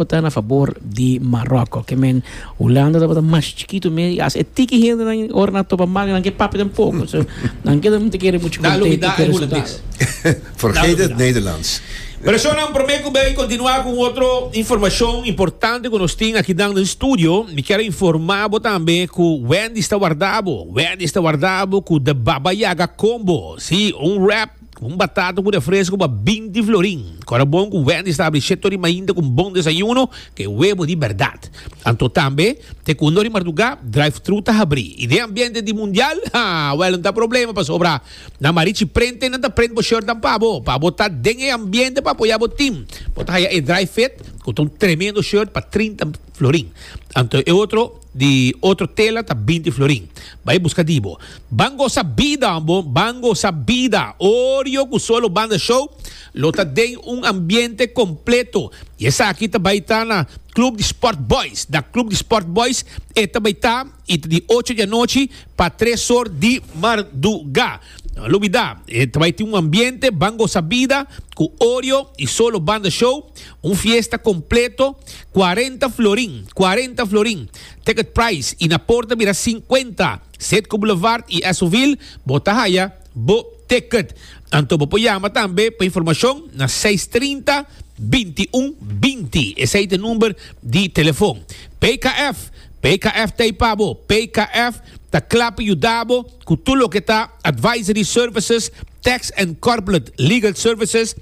No ta na fabor di Maroko. Ke men Hulanda tabata mas chikitu mes i hasta e tiki hendenan ora nan topa manga nan ke papia den poco. So nan ke tabata kere muchu contento cu e resultado. Dalo midá e Hulandes. Vergeet het Nederlands. Personanan, prome cu bay continua cu un otro informacion importante cu nos tin akinan den studio. Mi kier a informa bo tambe cu Wendy's ta warda bo. Wendy's ta warda bo cu The Baba Yaga Combo. Sí, un wrap. Un batata cu refresco ba binti florin. Cora bon cu Wendy sta abri Cheto di Mainta cu un bon desayuno cu e webo di berdad. Anto tambe, te cu un lo di marduga, drive-thru ta habri. Y den ambiente di Mundial, ha, wel no ta problema pasobra na Marichi Prente nan ta prent bo shirtnan pa bo. Pa bo ta den e ambiente pa apoya bo team, bo ta haya e drive-fit cu ta un tremendo shirt pa trinta. florin. Anto e otro di otro tela ta binti florin. Bai buska di bo. Ban gosa bida bo, ban gosa bida. Orio ku solo banda show lo ta den un ambiente kompleto. I esaki ta bai ta na Club di Sport Boys. Na Club di Sport Boys e ta bai ta. y ta di ocho di anochi pa tres or di marduga. No lubida, e ta bai tin un ambiente ban gosa bida cu Oreo y Solo Banda Show, un fiesta completo, cuarenta florin, cuarenta florin, ticket price y na por ta bira cincuenta. Setco Boulevard y Esoville, bo ta haya bo ticket. Anto bo por yama tambe pa informacion na seis trinta, binti un binti, esey ta e number di telefon. PKF. PKF ta ei pa bo. PKF ta kla pa yuda bo ku tur loke ta advisory services, tax and corplet legal services,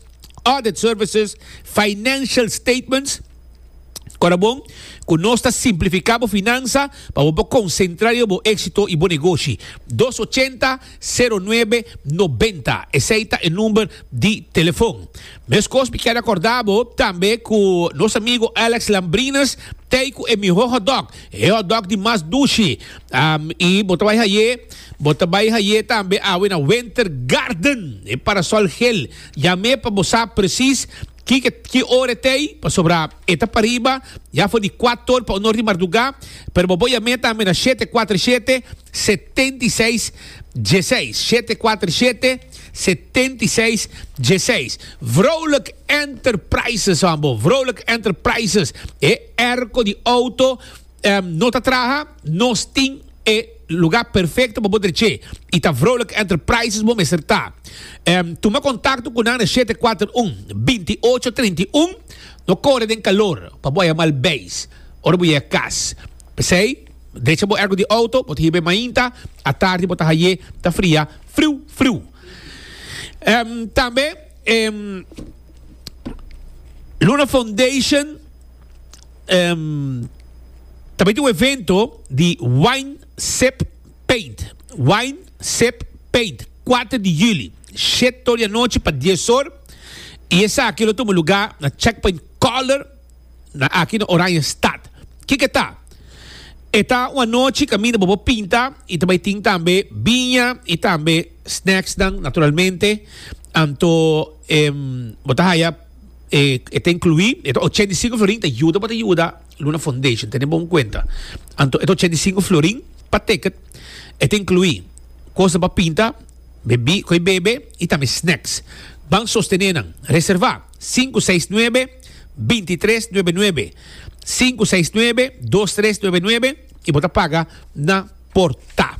audit services, financial statements. Ora bon ku nos ta simplifiká bo finansa pa bo por konsentrá riba bo éksito i bo negoshi. Dos ochenta. Sero nuebe nobenta, esei ta e number di telefon. Meskos mi keda korda bo tambe ku nos amigu Alex Lambrines t'ei ku e mihó hotdog, e hotdog di mas dushi. I bo ta bai haye, bo ta bai haye tambe awe na Winter Garden, e Parasol Gel. Yam'é pa bo sa presis. Kiko ki ora e ta ei, pasobra e ta pariba ya for di kuator pa un or di mardugá, pero bo bo yam'é tambe na shete kuater shete, setenta i seis, dieseis, shete kuater shete, setenta i seis, dieseis. Vrolijk Enterprises, hoan bo, Vrolijk Enterprises, e erko di outo. Ehm no ta traha, nos tin e lugar perfecto pa bo dreche y ta Vrolijk Enterprises bo mester ta. Ehm tuma contacto cu nan na shete kuater un, binti ocho trinta i un. No core den calor pa bo a yama al beis ora bo yega cas. P'esey drecha bo ergo di auto, bo ta hiba e mainta, atardi bo ta haye ta fria friu friu. Ehm tambe ehm Luna Foundation. um, también tin un evento di Wine Sip Paint. Wine Sip Paint, 4 di juli, 7 ora di anochi pa 10 ora. Y esaki lo tuma lugar na Checkpoint Color, na aki na Oranjestad. Kiko ta? E ta un anochi kaminda bo por pinta y ta bay tin tambe biña y tambe snacksnan, naturalmente. Anto, em, bo ta haya. eh, e ta inclui, e ta 85 florin ta yuda pa ta yuda Luna Foundation, tene bon cuenta. Anto, e ta 85 florin pa ticket, e ta inclui cosa pa pinta, bebi, coi bebe y tambe snacks. Ban sostene nan, reserva 569 2399, 569 2399. y bo ta paga na porta.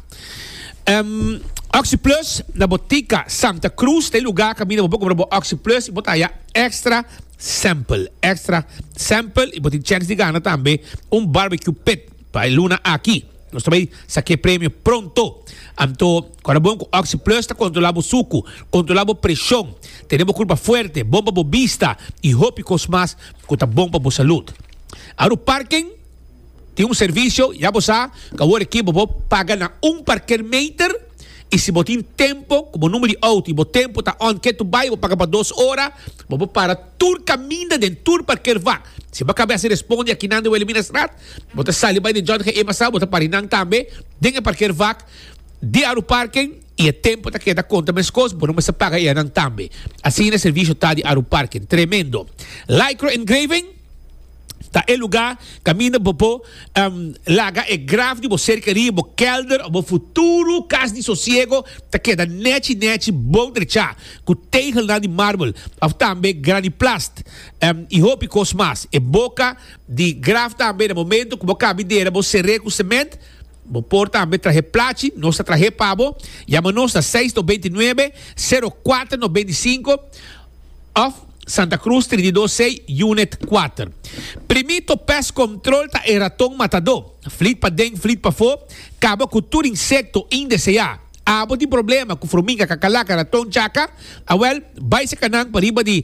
Um, OxyPlus na botica Santa Cruz, te lugar camina bo cobra bo OxyPlus y bo ta ya extra sample, extra sample y bo tin chance di gana tambe un barbecue pit pa luna aki. Nos ta bay saque premio pronto. Anto, cuando bon con OxyPlus ta controla bo suku, controla bo presión, tene bo culpa fuerte, bon pa bo vista y hopi cos mas cu ta bon pa bo salud. Aru parking? Tin un servisio, ya bo sa, ku awor aki bo por paga na un parkermeter i si bo tin tempu, ku bo number di outo i bo tempu ta on ke tu bai, bo paga pa dos ora, bo por para tur kaminda den tur parkervak. Si bo a kabe hasi respondi akinan di Wilhelmina Straat, bo ta sali bai den Jorge Ema Straat, bo ta para di nan tambe den e parkervak di Aruparken i e tempu ta keda konta meskos, bo no mester paga i anan tambe. Asina e servisio ta di Aruparken. Tremendo! Lycra Engraving. ta e lugá kaminda bo por laga e graf di bo serkaria, bo kèlder òf bo futuro kas di sosiego ta keda nèchi nèchi bon drechá ku tegelnan di marbel òf tambe graniplast i hopi kos mas. E boka di graf tambe na momentu ku bo kabi dera bo ser'é ku sement. Bo por tambe trahe plachi, nos ta trah'é pa bo. Yama nos na seis tòf beinti nuebe, sero kuater nòf beinti sinku. Of Santa Cruz Trintidos Sei Unit Kuater Primito Pest Control ta e raton matadó, flit pa den flit pafó, kaba ku tur insekto indeseá. Abo tin problema ku furmiga, kakalaka, raton, chaka? Awèl, bai seka nan pa riba di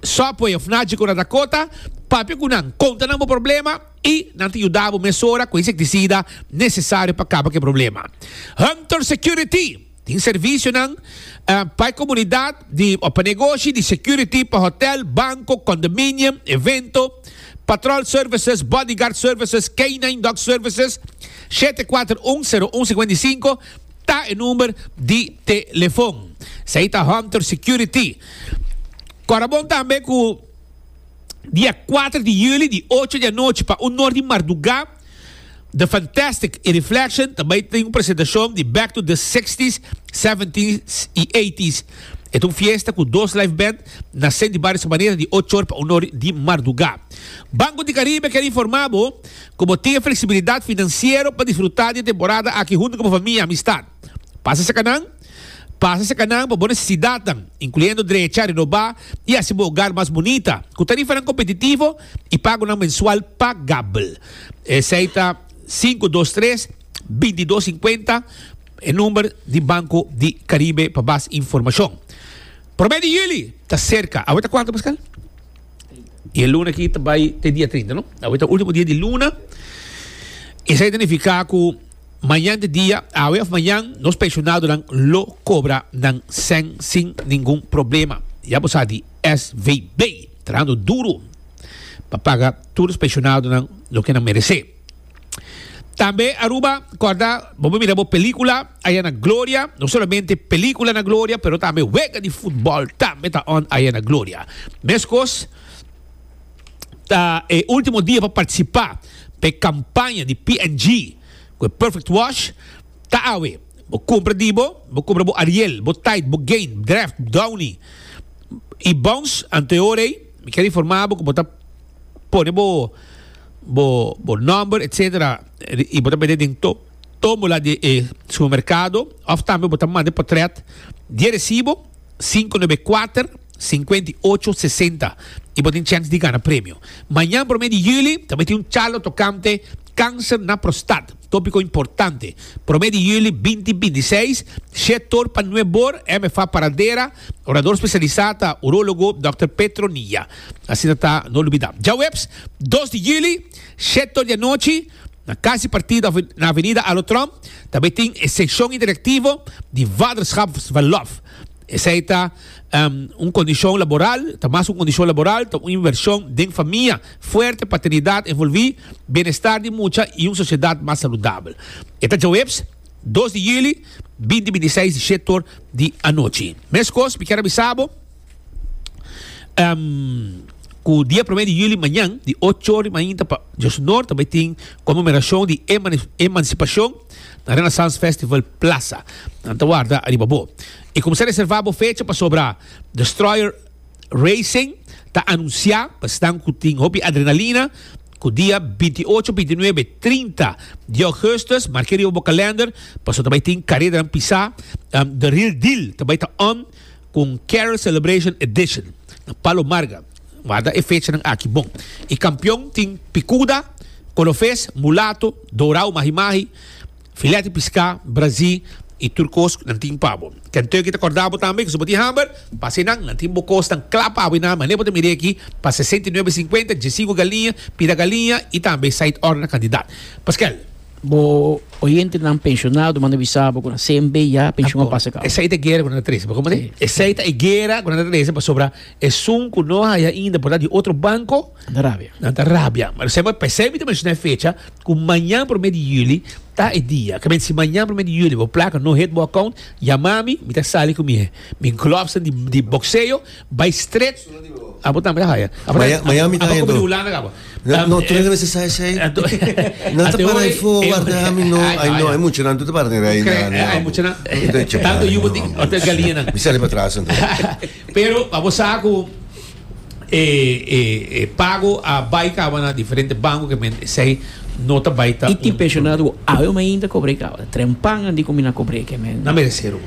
Subway òf Nachi Kora Dakota, papia ku nan, konta nan bo problema i nan ta yuda bo mesora ku insektisida nesesario pa kaba ku e problema. Hunter Security. Tin servisionan pa e komunidat di òf pa negoshi, di security pa hotèl, banko, kondominium, evento, patròl services, bodyguard services, canine dog services. Shete kuater un, seru un sikuenta i sinku ta e number di telefon. Esei ta Hunter Security. Kòrda bon tambe ku dia kuater di yüli di ocho di anochi pa un nor di mardugá The Fantastic y Reflection ta bay tin un presentacion di back to the sixties, seventies y eighties. E ta un fiesta cu dos live band na Saint di Bario Sabanera di ochor pa unor di marduga. Banco di Caribe ker informa bo cu bo tin e flexibilidad financiero pa disfruta di e temporada aki hunto cu bo famia y amistad. Pasa seca nan. Pasa cerca nan pa bo necesidadnan, incluyendo drecha, renoba y haci bo hogar mas bunita cu tarifanan competitivo y pagonan mensual pagabel. Esey ta sinku dos tres bintidos singkuenta, e number di Banco di Caribe pa bas informacion. Prome di juli ta cerca. Awe ta cuantu, Pascal? Y e luna aki ta bay te dia trinta, no? Awe ta ultimo dia di luna. Esey ta nifica cu Mañan di dia, awe of mañan, nos pensionadonan lo cobra nan cen sin ningun problema. Ya bo sa di SVB trahando duro pa paga tur nos pensionadonan loke nan merece. Tambe Aruba, corda, bo por mira bo pelicula aya na Gloria. No solamente pelicula na Gloria, pero tambe wega di football tambe ta on aya na Gloria. Mescos. ta e ultimo dia pa participa pa e campaña di P&G cu e Perfect Wash ta awe. Bo cumpra di bo, bo cumpra bo Ariel, bo Tide, bo Gain, Dreft, Downy y Bounce anto e ora ey mi kier informa bo cu bo ta pone bo bo number etc y bo ta mete den to tombola di e supermercado of tambe bo ta manda e potret di e recibo. Sinku nobe kuater sinkuenta i ocho sesenta i bo tin chèns di gana premio. Mañan promé di yüli ta miti un charla tokante Kanser na prostat, tópiko importante. Promé di yüli binti binti seis, shé tor pa nue bor, MFA Paradera, orador spesialisá ta urólogo dòkter Petronilla. Asina ta, no lubidá. Djaweps dos di yüli, shèt tor di anochi. Na casi partida na Avenida Alotron ta bay tin e seccion interactivo di Waterschap Svalov. Esey ta um, un condicion laboral, ta mas un condicion laboral, ta un inversion den famia fuerte, paternidad envolvi, bienestar di mucha y un sociedad mas saludabel. E ta djaweps dos di juli binti binti seis di shetoor di anochi. Mescos mi kier a bisa bo. Um, cu dia prome di juli mañan, di ocho ora di mainta pa Diosnor, tambe tin conmemoracion di Emancipacion na Renaissance Festival Plaza. Nan ta warda ariba bo. Y cuminsa reserva bo fecha pasobra Destroyer Racing ta anuncia, pa esnan cu tin hopi adrenalina, cu dia binti ocho, binti nuebe, trinta di augustus, marke riba bo calender, pasobra ta bay tin careranan pisa. Um, The Real Deal ta bay ta on. Cu un Carol Celebration Edition na Palo Marga. Warda e fechanan aki bon. E campeon tin picuda, colofes, mulato, dorao mahi mahi, filet di pisca, brazi y tur cos nan tin pa bo. Kentucky ta corda bo tambe cu si bo tin hamber, pasa enan. Nan tin bo cosnan cla pa bo y nan mane bo ta mire aki pa sesenta y nuebe cincuenta, djiesinco galiña, pira galiña y tambe side order na cantidad. Pasquel. Bo oyentenan pensionado manda bisa bo kura CNB ya pension a pasa kau. Esei ta gera ku nan ta trese, bo kompran? Sí. Esei ta e gera ku nan ta trese pasobra esun ku no haya inda por ta di otro banko, Anda rabia. nan ta rabia. Pero se bo p'esei mi ta menshona e fecha ku mañan promé di yuli ta e dia. Ke mente si mañan promé di yuli bo plaka no hit bo akount, yama mi, mi ta sali ku mi mi glòfsnan di di bokseo Bay stret abo tambe ta haya Miami ta haya do no tu no mester sa esey nan ta para ay fo warda ami no ay no ay mucha nan tu ta para den rey tanto yu boti ota galia nan mi sali pa tras anto pero abo sa ku e pago a bay kaba na diferente banko ke men esey no ta bay ta y tin pensionado abo mainta kobre kaba trempangan di ku mi na kobre ke men.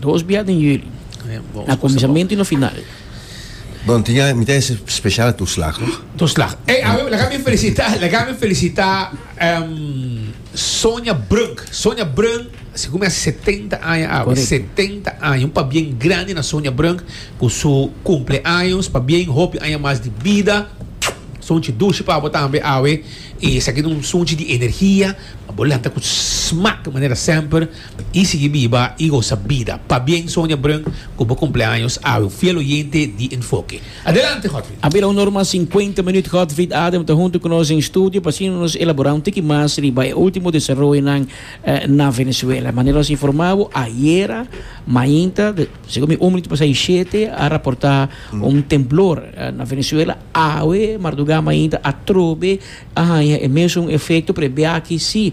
Dos bia den juli. Na kuminsamentu i na final. Bo tin ya mi ta hese spesial na tur slag toch? Tur slag. Ey awe laga mi felisitá, laga mi felisitá Sonia Brunk. Sonia Brunk sigur mi hasi setenta aña awe. Correcto. Setenta aña. Un pabien grandi na Sonia Brunk ku su kumpleaños. Pabien hopi aña mas di bida. Sunchi dushi pa bo tambe awe. I esaki ta un sunchi di energia pa bo lanta ku smak manera semper. i sigui biba i gosa bida. Pabien Sonia Brun ku bo kumpleaños awe un fiel oyente di Enfoke. Adelante Godfrid! A bira un norma sinkuenta minüt. Godfrid Adam ta huntu ku nos den studio pa asina nos elaborá un tiki mas riba e último desaroyonan na Venezuela. Manera nos informá bo ayera mainta, segun mi un minüt pasá i shete, a raportá un temblor na Venezuela. Awe mardugá mainta atrobe a haña e mesun efekto p'e biachi si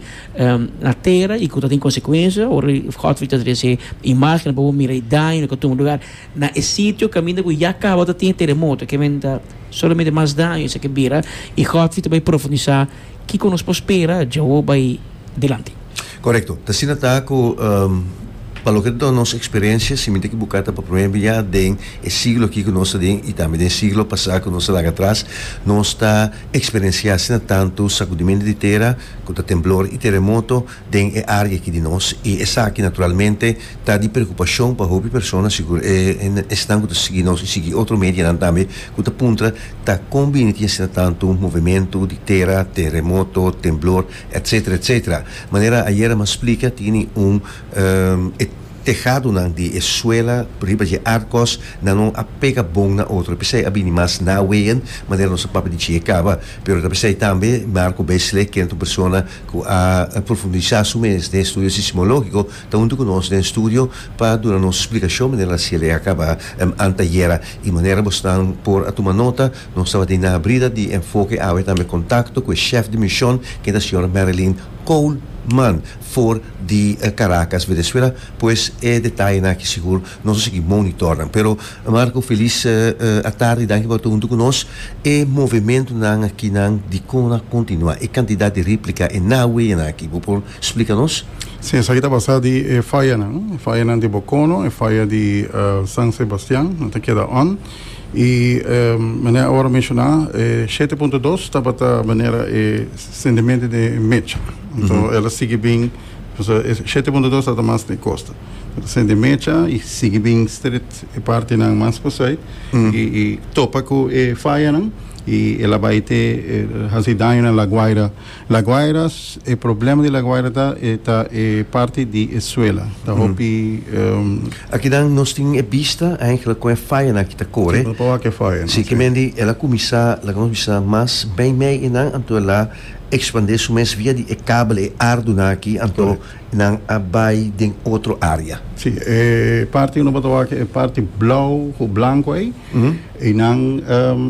na tera i ku ta tin konsekuensia. Ora di Godfrey ta trese e imágennan pa bo mira e daño na kontumber lugar. Na e sitio kaminda ku ya kaba ta tin e teremoto, ke menta solamente mas daño esaki bira i Godfrey ta bai profundisá. Kiko nos por spera Jehoba bai dilanti? Korekto. Ta asina ta ku pa loke ta nos eksperensia, siminti ku bo kata pa promé biaha den e siglo aki ku nos ta den i tambe den siglo pasá ku nos ta laga atras, nos ta eksperensiá asina tantu sakudimentu di tera ku ta temblor i teremoto, den e área aki di nos i esaki naturalmente ta di preokupashon pa hopi persona, sigur e esnan ku ta sigui nos i sigui otro medianan tambe ku ta puntra ta kon bini tin asina tantu movementu di tera, teremoto, temblor, etsetera etsetera. Manera ayera mi a splika tini un e tehadonan di e suela riba dje artkos nan no a pega bon na otro p'esei a bini mas naween manera nos a papia di dje kaba pero ta p'esei tambe Marco Besle kende un persona ku a profundisá su mes den estudio sismológiko, ta huntu ku nos den studio pa duna nos splikashon manera na siel a kaba anteayera. I manera bosnan por a tuma nota, nos tabatin na abrida di Enfoke awe tambe kontakto ku e shèf di mishon, ken ta señora Marilyn Coleman for di Caracas, Venezuela. Pues e detayenan aki sigur Nos a sigui monitornan. Pero Marco felis atardi danki pa ta huntu ku nos. E movementunan akinan dikon a kontinua? E kantidat di replika e na weyanan aki bo por splika nos? Si, esaki ta basá di e fayanan. E fayanan di Bokono, e faya di San Sebastian nan ta keda on. I manera awor a menshoná e shete punto dos tabata manera e sendemente di e mecha. Anto el a sigui bin. Pasobra e shete punto dos tabata mas den costa. Bo ta sende mecha y sigui bin stret e partinan mas pasai y y topa cu e fayanan y el a bay te haci daño na La Guaira. La Guaira, e problema di La Guaira ta e ta e parti di e suela. Ta hopi. Aki nan nos tin e bista eigenlijk con e fayanan aki ta core. Ki ta wak e fayanan, si. Si kimendi el a cuminsa, laga nos bisa, mas bay mey y nan anto el a. Expandé su mes via di e kabel e arduna aki, anto nan a bai den otro area. Sí, e parti unu por ta wak aki, e parti blou ku blanku ei, ei nan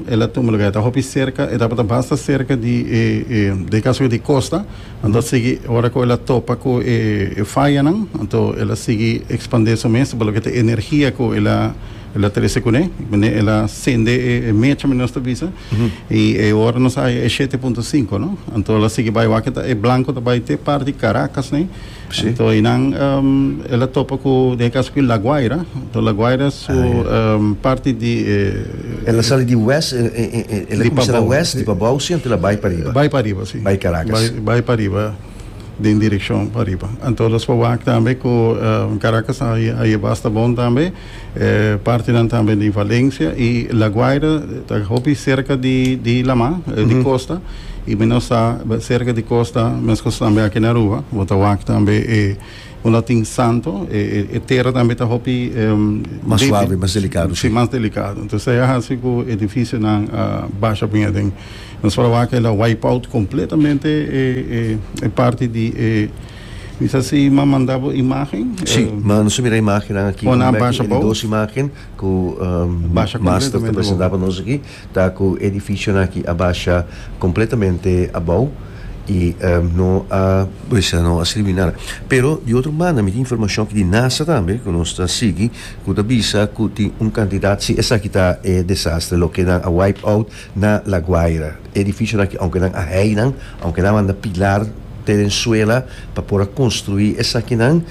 e la tuma luga, e ta hopi serka, e tabata basta serka di e, e, den kaso di kosta, anto sigui, ora ku e la topa ku e fayanan, anto e la sigui expandé su mes, pa loke ta energia ku e la. El a trece cu ne, mene el a sende e, e mecha, mene nos ta bisa, y e ora nos haya e shete punto cinco, no? Anto el a sigui bai wak, ta e blanco ta bai te parti Caracas, ne? Sí. Anto einan um, el a topa cu, den e caso cu La Guaira, anto La Guaira su Ah, ja. um, parti di eh, El a sali di west, eh, eh, eh, eh, el a Di cuminsá na Pabao. west, di Pabao, sí, anto el a bai pa riba. Bai pa riba, sí. Bai Caracas. Bai, bai pa riba, den direccion pa riba. Anto los pa wak tambe cu um, Caracas a, a lleba hasta bon tambe. Eh, partinan tambe di Valencia y La Guaira ta hopi cerca di, di Lama, eh, di costa. Y mi no sa be- cerca di costa, mescos tambe aki na Aruba, bo ta wak tambe eh, un latin santo, eh, eh, eh, terra tambe ta hopi, em, Mas débil. suave, mas delicado, Sí, sí. mas delicado. Entonces e a haci cu edificionan a basha bien aden. Nos para wak el a wipe out completamente eh, eh, e parti di e Mi sa si m'a manda bo imagen. Sí, m'a nos a mira imagennan aki. Pon nan basha bou. E dos imagen ku Basha Master ta completamente bou. presenta pa nos aki ta ku e edificionan aki a basha completamente abou i no a bisa no a sirbi nada. Pero di otro banda mi tin informacion aki di NASA tambe ku nos ta sigui ku ta bisa ku tin un cantidad si esaki ta e desastre loke nan a wipe out Na La Guaira, edificionan ki aunke nan a heinan, aunke nan a manda pilar te den suela pa por a construi esakinan,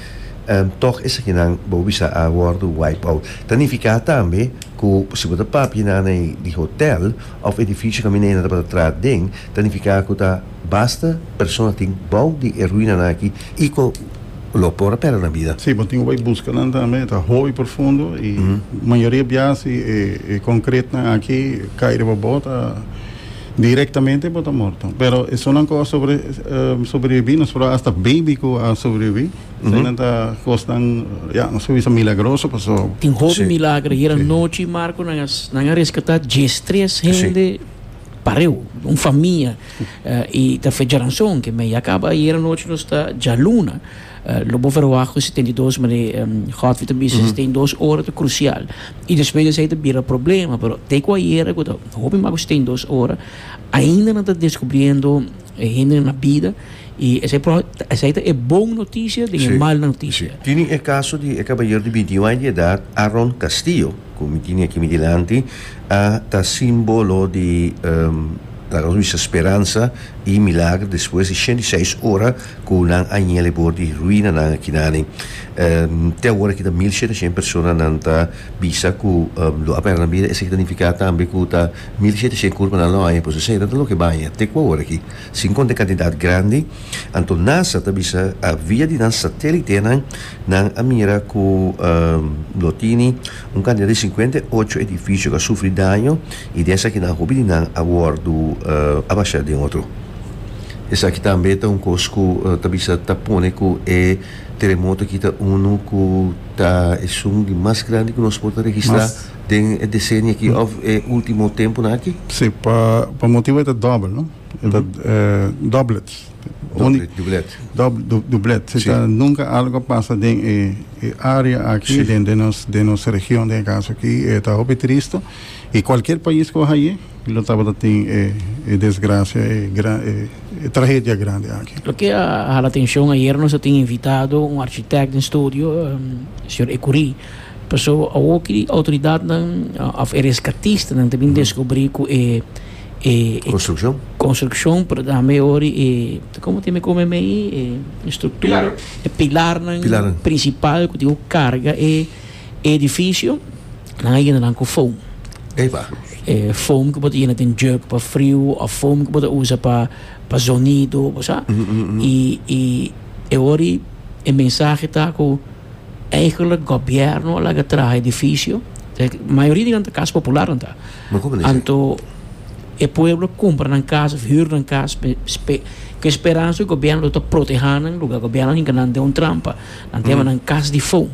tog esakinan bo a bisa a wordo wipe out. Ta nifica tambe cu si bo ta papia na ei di hotel of edificio caminda ei nan tabata traha den, ta nifica cu ta. Basta persona tin bou di e ruinanan aki i ku lo por a pèrdè nan bida. Sí, bo tin ku bai buska nan tambe, e ta hopi profundo i mayoria bias di e konkretnan aki kai riba bo ta direktamente bo ta morto. Pero esonnan ku a sobreviví, nos por a hasta baby ku a sobreviví, eseinan ta kosnan, ya, nos por bisa milagroso pasó. Tin hopi milagro. Hieranochi, Marco, nan a reskatá diestres hende. Pareu, un famia i ta fecha ranson ke mei a kaba i era nochi nos ta djaluna lo bo verwacht ku setenta i dos mane Godfrey ta bisa si ten dos ora ta krusial i despues di esei ta bira problema pero te ku ayera ku ta hopi mas ku setenta i dos ora ainda nan ta deskubriendo e hende nan na bida i esei esei ta e bon notisia den e mal notisia. Tini e kaso di e kabayer di binti i un aña di edat Aaron Castillo. Cu mi tene aki mi dilanti a ta simbolo di laga nos bisa speransa y milagro despues di shenti seis ora cu nan a yega alebor di ruinanan aki nani. Te awor aki ta mil shete shen persona nan ta bisa cu lo a perde nan bida esaki ta nifica tambe cu ta mil shete shen curpanan lo a haña pues esaki ta loke baña te cu awor aki. Si un kontekantidat grandi, anto nasa ta bisa a via di nan satelitenan nan a mira ku lo tini un kantidat di sinkuenta i ocho edifisio ku a sufri daño i den esaki nan hopi di nan a wòrdu a basha den otro. Esaki tambe ta un kos ku ta bisa ta pone ku e teremoto aki ta unu ku ta esun di mas grandi ku nos por ta registra. den e decenio aki of e ultimo temponan aki? Si, pa pa motibo e ta dobel no, e ta doblets, Doble, dublet. dob du dublet, si Si. ta nunca algo a pasa den e e area aki Si. den den nos den nos region den e caso aki e ta hopi triste y cualkier pais cu a haye lo tabata tin e e desgracia e gran e e tragedia grandi aki. Loke a hala atencion ayer nos a tin invitado un architect den studio, señor Ecurie. Paso awor ki di outoridatnan of e reskatistanan ta bin deskubri ku e Konstrukshon. konstrukshon por tambe ori e komo tin mi kome mei e struktura e pilarnan Pilarnan. prinsipal ku tin ku karga e edifisio nan a yena nan ku foam Epa. e foam ku bo ta yena den jug pa friu of foam ku bo ta usa pa pa zonido bo sa i i e ori e mensahe ta ku. Eigenlijk gobierno a laga traha edificio. E mayoria di nan ta kas popular nan ta. Ma como dice? Anto e pueblo kumpra nan kas of hür nan kas pe spe ku esperansa ku gobierno lo ta proteha nan luga gobierno a hinka nan den un trampa nan ta yama nan kas di foam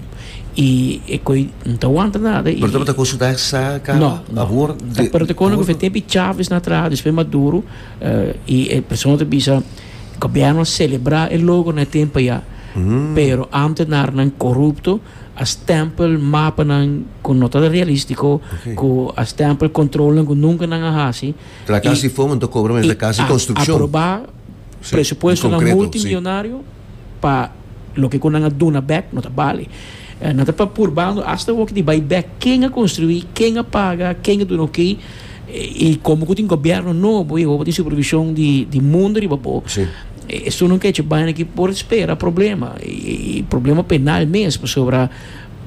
i e koe no ta wanta nada i Pero taba ta consulta sa ka No, no. abor Ta- Pero te kono ku fe te bichaf is na traha despues Maduro eh, i e persona ta bisa Gobierno a celebra e logo na e tempo ya, pero ambtenarnan corupto a stempel mapanan cu no ta realistico, cu a stempel controlnan cu nunca nan a haci, y a aproba presupuestonan multimillonario pa Loke ku nan a duna bèk no ta bali. Nan ta purbando asta awor di bai bèk ken a konstruí, ken a paga, ken a duna oké i komo ku tin gobièrnu nobo i awor bo tin supervishon di mundu riba bo. Esun un kechi baina ku por spera problema i problema penal mes pasobra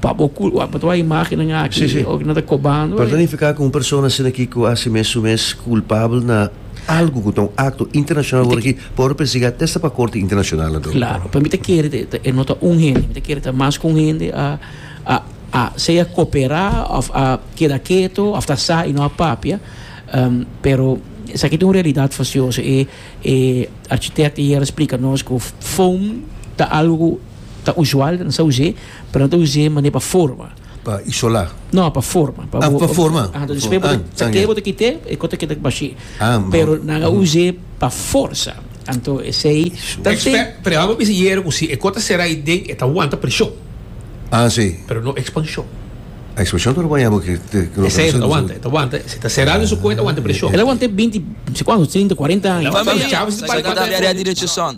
pa bo kulpa bo ta wak imágennan aki nan ta kobando. Por ta nifiká ku un persona asina ku a hasi mesun mes kulpabel na Algu ku ta un akto internashonal wòrdu aki por persigá te sta pa korte internashonal ado. Klaro, pa mi ta kere te, te e no ta un hende, mi ta kere ta mas ku un hende a a a sea koperá òf a keda keto òf ta sa i no a papia, em, pero esaki ta un realidat fasioso. E e architect ayer a splika nos ku foam ta algu ku ta usual, nan sa us'é, pero nan ta us'é manera pa forma. Pa isola? No, pa forma. Pa, ah, pa forma. Ah, entonces después ah, bote, ah, bote kite, e kote kite bashi. Ah, pero naga mm. use pa forza. Anto esei. Expert, pero amo bisa yero ku si e kota sera i den eta aguanta presión. Ah, sí. Pero no expansión. A expansión no lo llamo que te que lo Ese está aguanta, está aguanta. Si está cerrado en su cuenta, aguanta presión. Él aguanta 20, no sé cuánto, 30, 40 años. Vamos, chavos, para que te direito son.